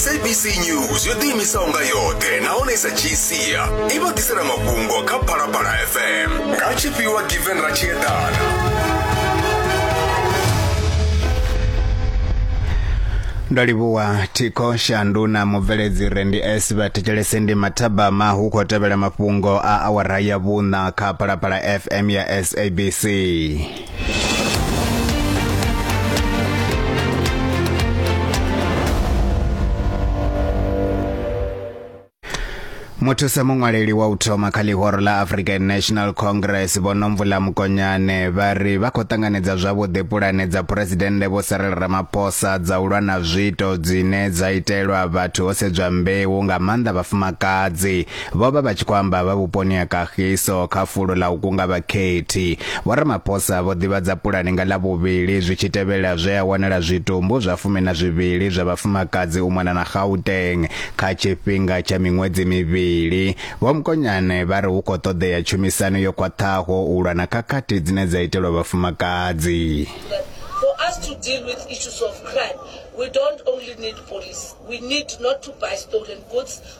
sabc news yo ḓiimisaho nga yoṱhe nahone sa tshiisia i vha ḓisela mafhungo kha phalaphala fm nga tshifhiwa given ra tshiedana ndo livhuwa thikho shandu na mubveledzi re ndi s vha thetshelese ndi mathabama hu khou tevhela mafhungo a awara ya vhuṋa kha phalaphala fm ya sabc muthusa muṅwaleli wa u thoma kha ḽihoro ḽa african national congress vho nomvula mukonyane vha ri vha khou ṱanganedza zwavhuḓi pulane dza phuresidennde vho sarela ramaphosa dza u lwa na zwiito dzine dza itelwa vhathu ho sedzwa mbeu nga maanḓa vhafumakadzi Vho vha vha tshi khou amba vha vhuponi ha Kagiso kha fulo ḽa u kunga vhakhethi. Vho Ramaphosa vho ḓivhadza pulane nga ḽa vhuvhili zwi tshi tevhela zwe a wanala zwitumbu zwa fumi na zwivhili zwa vhafumakadzi u mona na Gauteng kha tshifhinga tsha miṅwedzi mivhili. Vho Mkonyane vha ri hu khou ṱoḓea tshumisano yo khwaṱhaho u lwa na khakhathi dzine dza itelwa vhafumakadzi. For us to deal with issues of crime, we don't only need police. We need not to buy stolen goods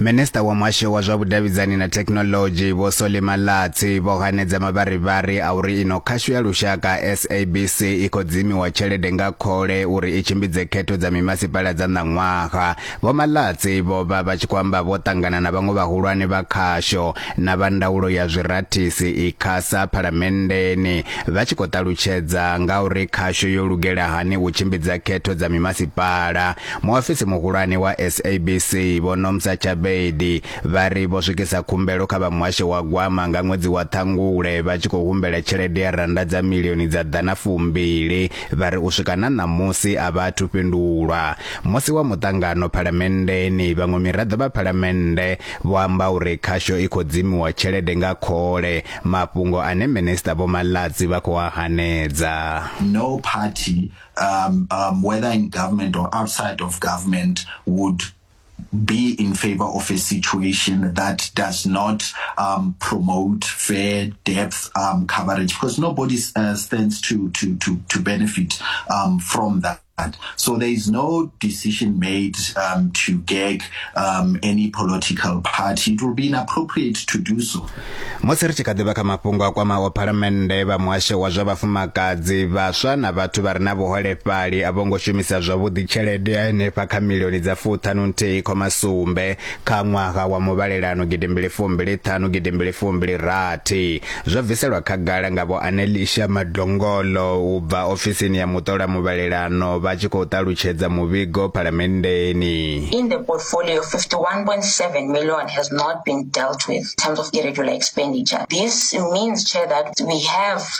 minista wa muhasho wa zwa vhudavhidzani na thekhinoḽodzhi vho soli malatsi vho hanedza mavharivhari a uri ino khasho ya lushaka sabc i khou dzimiwa tshelede nga khole uri i tshimbidze khetho dza mimasipala dza ṋaṅwaha Vho Malatsi vho vha vha tshi khou amba vho ṱangana na vhaṅwe vhahulwane vha khasho na vha ndaulo ya zwirathisi i khasa phalamenndeni vha tshi khou ṱalutshedza nga uri khasho yo lugela hani u tshimbidza khetho dza mimasipala. Muofisi muhulwane wa SABC Vho Nomsa Chabedi vha ri vho swikisa khumbelo kha vha muhasho wa gwama nga ṅwedzi wa Ṱhangule vha tshi khou humbela tshelede ya rannda dza milioni dza ḓana fumbili vha ri u swika na ṋamusi a vha athu fhindulwa. Musi wa muṱangano phalamenndeni, vhaṅwe miraḓo vha phalamennde vho amba uri khasho i khou dzimiwa tshelede nga khole, mafhungo ane Minisiṱa Vho Malatsi vha khou a hanedza. No party, um, um, whether in government or outside of government, would be in favor of a situation that does not um, promote fair depth um, coverage because nobody uh, stands to, to, to, to benefit um, from that. So there is no decision made um, to gag um, any political party. It will be inappropriate to do so. musi ri tshi kha ḓivha kha mafhungo a kwamaho phalamennde vha muhasho wa zwa vhafumakadzi vhaswa na vhathu vha re na vhuholefhali a vho ngo shumisa zwavhuḓi tshelede ya henefha kha milioni dza fuṱhanu nthihi khoma sumbe kha ṅwaha wa muvhalelano gidi mbili fumbili ṱhanu gidi mbili fumbili rathi zwo bviselwa khagala nga vho anelisha madongolo u bva ofisini ya muṱola muvhalelano vha tshi khou ṱalutshedza muvhigo phalamenndeni in the portfolio 51.7 million has not been dealt with in terms of irregular expenditure this means chair that we have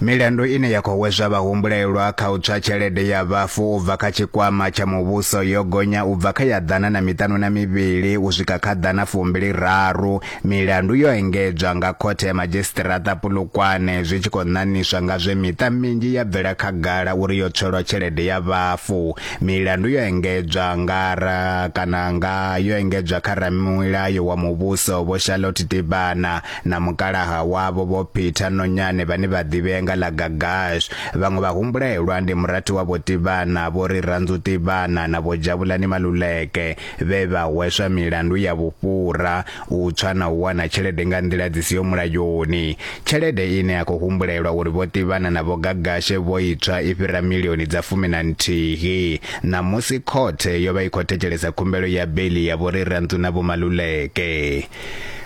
Milandu ine ya khou hweswa vhahumbulelwa kha u tswa tshelede ya vhafu u bva kha tshikwama tsha muvhuso yo gonya u bva kha ya ḓana na miṱanu na mivhili u swika kha ḓana fumbili raru. Milandu yo engedzwa nga Khothe ya Madzhisiṱiraṱa Polokwane zwi tshi khou ṋaṋiswa nga zwe miṱa minzhi ya bvela khagala uri yo tswelwa tshelede ya vhafu. Milandu yo engedzwa nga ra kana nga yo engedzwa kha ramilayo wa muvhuso Vho Charlotte Tibana na mukalaha wavho vho Peter Nonyane vhane vha ḓivhea nga ḽa Gagash vhaṅwe vha humbulelwa ndi murathi wa vho Tivhana vho ri Ranzu Tivhana na vho Jabulani Maluleke vhe vha hweswa milandu ya vhufhura u tswa na u wana tshelede nga nḓila dzi siho mulayoni tshelede ine ya khou humbulelwa uri vho Tivhana na vho Gagashe vho itswa i fhira milioni dza fumi na nthihi ṋamusi khothe yo vha i khou thetshelesa khumbelo ya beli ya vho ri Ranzu na vho Maluleke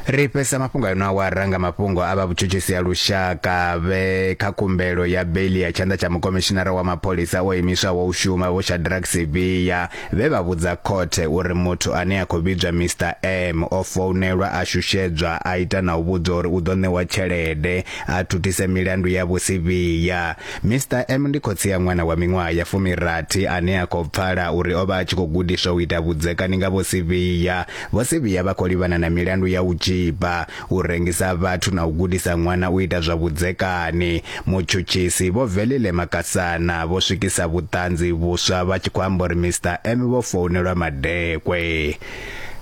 ri fhesa mafhungo a ino awara nga mafhungo a vha vhutshutshisi ha lushaka vhe kha khumbelo ya beli ya tshanḓa tsha mukomishinara wa mapholisa o imiswaho u shuma vho shadrack siviya vhe vha vhudza khothe uri muthu ane a khou vhidzwa mr m o founelwa a shushedzwa a ita na u vhudzwa uri u ḓo ṋewa tshelede a thuthise milandu ya vhusiviya mr m ndi khotsi ya ṅwana wa miṅwaha ya fumirathi ane a khou pfala uri o vha a tshi khou gudiswa u ita vhudzekani nga vhusiviya Vho si vhuya vha khou livhana na milandu ya u tzhipa, u rengisa vhathu na u gudisa ṅwana u ita zwa vhudzekani. Mutshutshisi Vho Velile Makasana vho swikisa vhuṱanzi vhuswa vha tshi khou amba uri Mister M vho founelwa madekwe.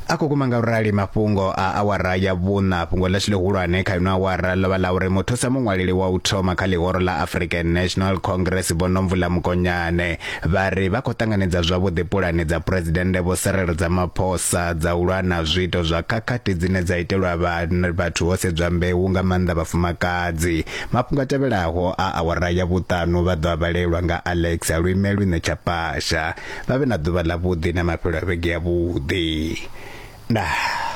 A kukuma nga u rali mafhungo a awara ya vhuṋa. Fhungo ḽashu ḽihulwane kha ino awara ḽo vha ḽa uri muthusa muṅwaleli wa u thoma kha ḽihoro ḽa African National Congress Vho Nomvula Mokonyane Vha ri vha khou ṱanganedza zwavhuḓi pulane dza Phresidennde Vho Cyril dza maphosa dza u lwa na zwiito zwa khakhathi dzine dza itelwa vhathu ho sedzwa mbeu nga maanḓa vhafumakadzi. Mafhungo a tevhelaho a awara ya vhuṱanu vha ḓo a vhalelwa nga Alex a lwime lwine tsha pasha. Vha vhe na ḓuvha ḽavhuḓi na mafhelo a vhege yavhuḓi. Ndaa.